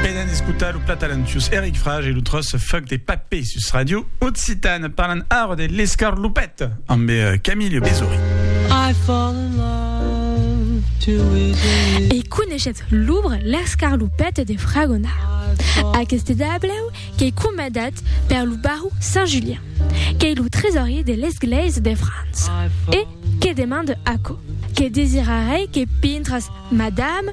Venen d'escotar lo plat talentuós Eric Frage e lo tròç Fuck de Papé sus Radio Occitane. Parlan ara de l'escarlopèt amb Camille Besory. I fall in love too easily. E coneishetz l'obre L'escarlopèt de Fragonard. Aqueste dablèu qu'ei comandat per lo baró Saint Julien, qu'ei lo tresorier de l'Esglèisa de França, e que demande aquò, Que desirarei que pintras, madame,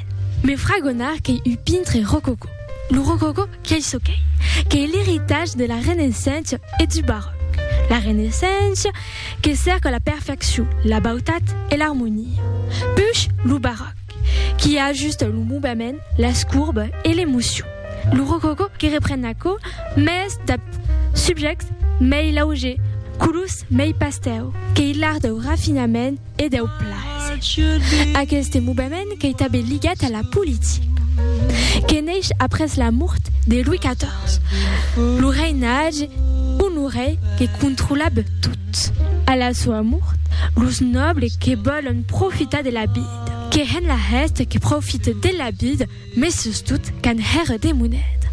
Me fragonar qu'ei un pintre rococò. Lo rococò qu'ei çò qu'ei, qu'ei l'eritatge de la Renaissença e du Baròc. La Renaissença que cèrca la perfeccion, la bautat e l'armonia. Push lo Baròc qui ajusta lo movement, las courbes e l'emocion. Lo rococò que repren aquò mès dab subjèctes mei laugers, colors mei pastèu, qu'ei l'art dau rafinament, e deu plaser. Aqueste movement qu'ei tanben ligat a la politica, que neish après la mort de Louis XIV, lo reinatge d'uno rei que controlab tot. A la soa mort, los nòbles que vòlon profitar de la vida, que hèn la hèsta que profite de la vida, Mes sustot qu'an hèr de moneda.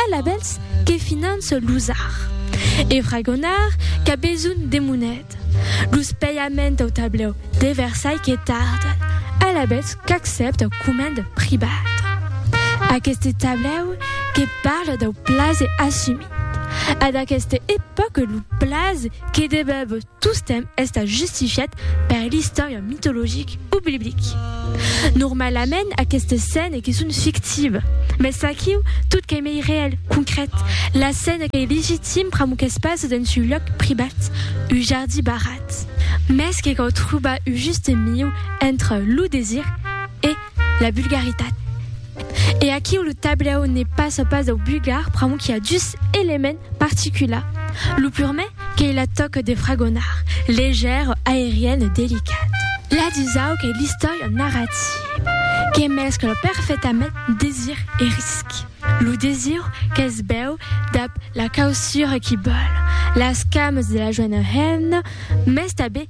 Ell a bèls que finance los ar. E fragonard qu'a besonh de moneda. Los pèiament au tablèu de Versailh que tarden. Ell a bèls qu'accèpta comènd pribat. Aqueste tablèu que parle dau plaze assumit. A d'aqueste epòque lo plaze que debèb Tostemp estat justifiat per l'istòria mitologic o biblic. Normalament aquestes scènes que son fictives, mès aquiu tot qu'ei mei reèl, concrèt, la scène qu'ei legitim pr'amor qu'es pas dens un lòc privat, un jardí barrat. Mès que cau trobar un juste mieu entre lo desir e la vulgaritat. E aquiu lo tablèu ne passa pas dau bulgar pr'amor qu'i a dus elements particulars. Lo purmèr, qu'ei la tòca de fragonar, legèra, aeriana e delicata. La dusau qu'ei l'istòria narrativa, que mescla perfectament desir e risc. Lo desir que's vèu dab la causura qu'i bòl, las camas de la joena hemna, mès tanben